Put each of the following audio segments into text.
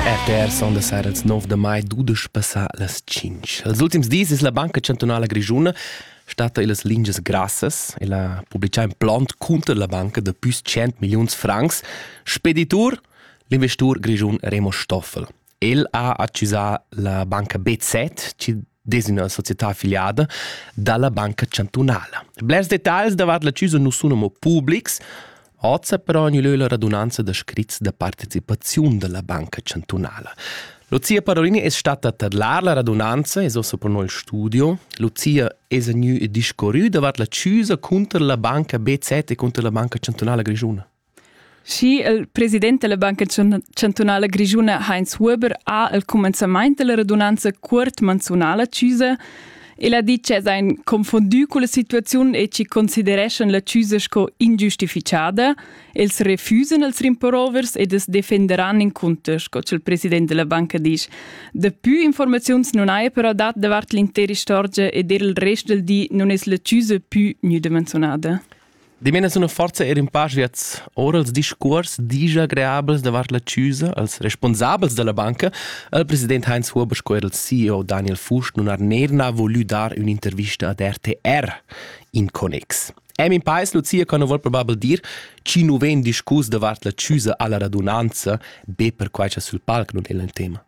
RTR son da sera ils 9 de mai dudesch passà las 5. Els ultims dis es la Banca Chantunala Grischuna stata illas lingias grassas e la publicà in plant cunter la banca da püs 100 milliuns francs speditur l'investur grischun Remo Stoffel. El ha accusà la banca BZ, chi des üna società affiliada dalla Banca Chantunala. Blers dettagls davart l'acciusa nu sun amo publics, oza però gnü lö la radunanza da scrits da partecipaziun dalla Banca Chantunala. Lucia Parolini es stata a tadlar la radunanza, es ossa pro nel studio. Lucia es gnü discorrü davart l'acciusa cunter la banca BZ e cunter la Banca Chantunala Grischuna. Schi il president della Banca Chantunala Grischuna Heinz Huber ha il cumenzament della radunanza cuort manzunala chiusa el ha dit che sein confondu con la situaziun e ci considereschan la chiusa sco ingiustificada, els refusen els rimporovers ed es defenderan in conto, sco il president della banca dice. Daplü informaziuns non haja però dat davart l'intera istorgia ed er il rest del di non es la chiusa più müde menzionada. Dimena suna forsa eir ün pa sviats ora als discuors digia agreabels davart la chüsa als respunsabels da la banca al president Heinz Huber sco eir al CEO Daniel Fuchs nun har neirna volü dar ün'intervista ad RTR in connex. Emin Pais Lucia co nu voul probabel dir chi nu vegn discuss davart la chüsa alla radunanza be perquai cha sul palc nun è il tema.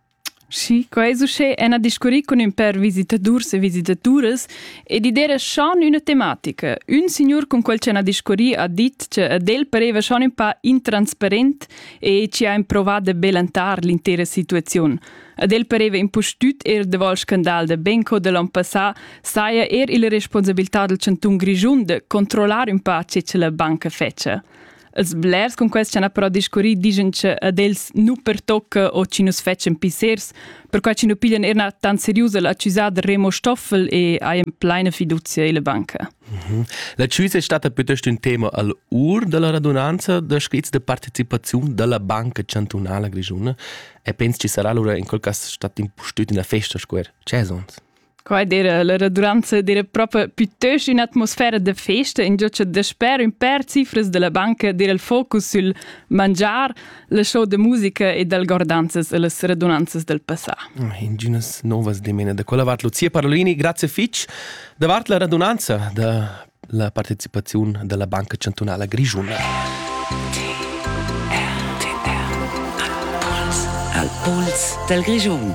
Schi, quei es uschè ena discurrì cun ün pêr visitadurs e visitaturas ed id era schon üna tematica. Ün signur cun quel chi hana discurrì ha dit che ad el pareva schon ün pa intransparent e chi ha improvat da belentar l'intera situaziun. Ad el pareva impustüt eir davol scandal da Benco da l'on passà saja eir illa responsabiltà dal chantun Grischun da controllar ün pa che la banca fetscha. Els blers cun quels ch'han però discurrì digen che ad els nu pertocca o chi nus fetschen pissers, perquai chi nu piglian erna tan seriusa l'accusada Remo Stoffel e hajan pleina fiducia illa banca. Mhm. L'accisa è stata piuttosto un tema al ur della radunanza da scrits de partecipazione della Banca Chantunala Grigiona e penso ci sarà allora in quel caso stato impustüt in la festa square. C'è sonst? Qua era la raduranza era proprio piuttost un'atmosfera da festa, in giò che dasper un per cifras della banca era il focus sul mangiar, la show de musica e dal gordanzas e las radunanzas del passà. Ah, Inginas novas demene da quella vart. Lucia Parolini, grazie fitch davart la radunanza da la partecipazione della Banca Cantonale Grigiuna. Al Puls del Grigiun.